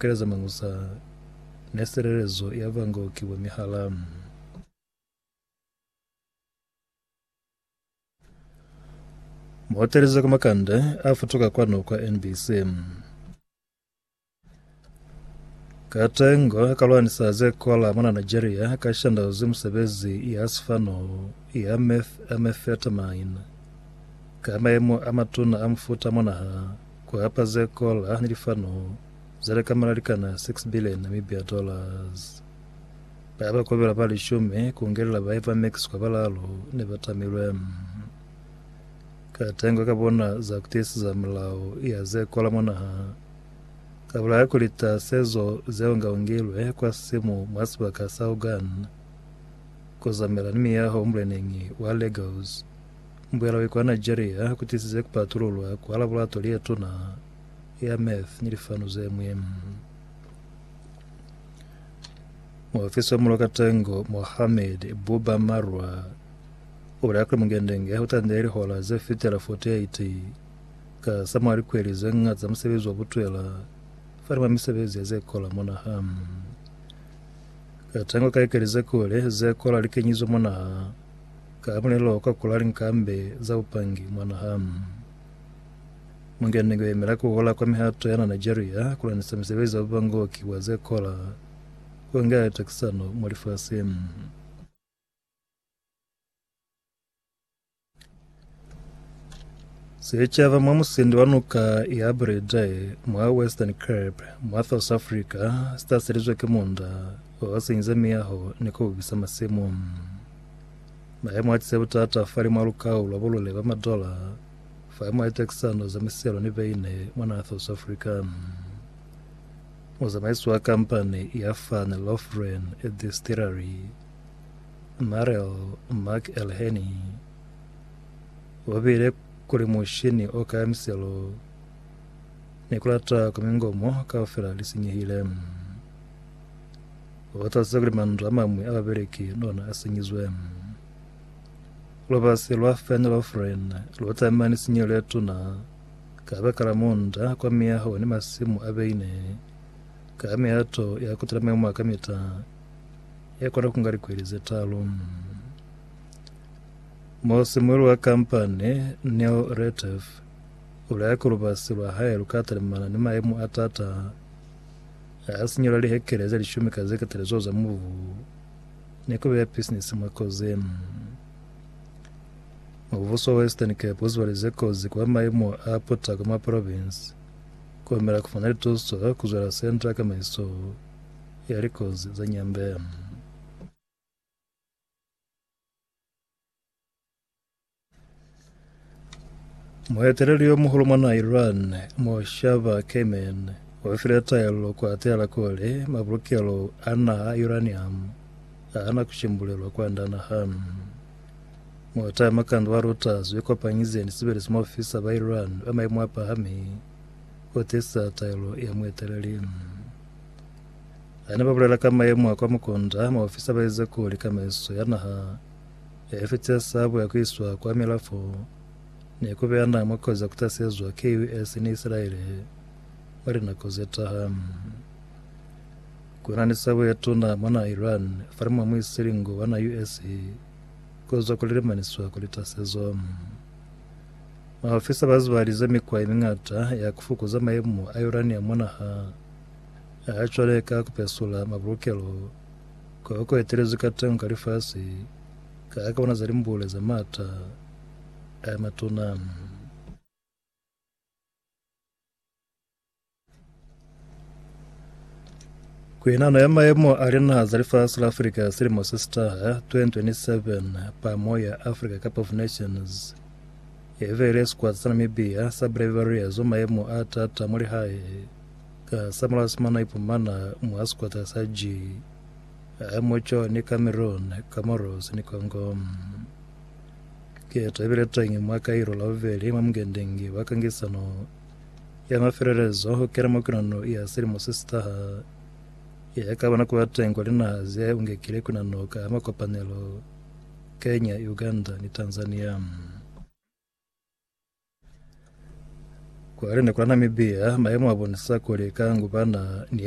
Keleza Mañusa ne silelezo ya bango ki bo Mihalamu. Muhoteli za kwa Makande a futuka kwanu kwa NBC. Katengo ka lwanisa ze kola mona Nigeria ka shandauzi musebezi ya sifano ya methamphetamine ka maemo a matuna a mufuta monaha Ku hapa ze kola ni lifano ze lekamela likana 6 billion Namibia dollars. Ba ba kobela ba lishumi, ku ngelela bahe ba Mexico balaalu, ne ba tamilwe. Ka tengo ka bona za ku tiiseza mulao ya ze kola mwa naha, ka bulaya ku lita sezo ze ungaungilwe kwa simu mwa sibaka sa Hogan, ku zamela ni miyaho muleneñi wa Lagos. Mbuyalo ye kwa Nigeria ku tisize ku patululwa kwa laboratori ye tuna ya meth ni lifanu ze ñwi. Muofisi wa mulo katengo Mohamed Buba Marwa o bulela kuli Mungendenge u tandile lihola ze fitela 48 ka sa mwa likweli ze ñata za musebezi wa butwela fani mwa misebezi ya ze kola mwa naha. Katengo ka likeli ze kule ze kola li kenyizwe mwa naha Ka mulelo wa kwa kula linkambe za bupangi mwa naha, Mungeni ku yemela ku hola kwa mihato ya na Nigeria ku lwanisa misebezi ya bubangoki bwa ze kola ku nga ya takisano mwa lifasi. Secaba mwa musindi wa nuka ya Bredai mwa Western Cape mwa South Africa sitaselizwe ki munda o senyize miyaho ni ku ubisa masimu. Mayemo a tise butata fa limwa lukau lwa bulule ba madola fa mwa litekisano za miselo ni beine mwa naha South Africa. Muzamaisi wa kampani ya Van Lofgren Distillery Marel Mark Elheny Ba beile kuli mushini o kaya miselo ni ku lata kwa mingomo kaufela li sinyehile. Ba batazisa kuli mandu a mamwi a babeleki ni ona a sinyizwe. Lubasi lwa Fenn Lofren lu batamana ni sinyeho le tuna ka baka la munda kwa miyaho ni masimu a beine ka mihato ya ku tula memo a kamita ya kona ku nga likweli ze talu. Musimueli wa kampani Neil Retief ulaya kuli lubasi lwa hae lukatalimana ni mayemo a taata ha sinyela lihekele ze lishumi ka zeketele zeo za mubu ni kubeya bisinisi mwa kozini. Mubuso wa Western Cape uzibalize kozi kwa mayemo a putako mwa provinsi kuhumela kufumana lituso kuzwela Centre ya Kamaiso ya Likozi za Nyambe. Mueteleli yo muhulu mwa na Iran, Mojtaba Khamenei, o file taelo ku atela kuli mabulukelo a naha a uranium a hana ku shimbulelwa kwanda naha. Motaya makando wa Reuters yo kopanyize ni sebelezi mo ofisa ba Iran ba maimo a pahami ku tisa taelo ya mueteleli. Ha ne ba bulela ka mayemo a kwa Mukonda, maofisa ba ize kuli kamaiso ya naha ya Efetia sabo ya ku iswa kwa milafo ne ku beya naha mwa kozi ya ku tasezwa ki US ni Isilaele mwa linako ze taha. Ku na ni sabo ye tuna mwa naha Iran fa limo mwi si lingo wa naha US ku zwa kuli li maniswa kuli tasezo. Maofisa ba zibalize mikwa ye mingata ya ku fukuza mayemo a uranium mwa naha Cwale ka ku pesula mabulukelo kwa ku etelezi ka teño ka lifasi, ka ka bona za limbule za m'ata a matuna. Ku inano ya mayemo a linaha za lifasi la Afrika silimo se si taha, 2027, pa moya Africa Cup of Nations ye vele sikwata sa Namibia sa Brave Warriors wa mayemo a tata mwa lihae. Ka sa mulao Simona a ipumana mwa sikwata sa G ha mo co ni Cameron, Comoros ni Congo. Keto ibile tañi mwa Cairo la bubeli mwa mungendengi wa kangisano ya mafelelezo ho kena mwa kunano ya silimo se sitaha ya ka bona kuba teng kwa linaha ze ungekile kunano ka makopanelo Kenya, Uganda ni Tanzania. Kwale ni kwa Namibia, mayemo a bonisa kuli ka nguba na ni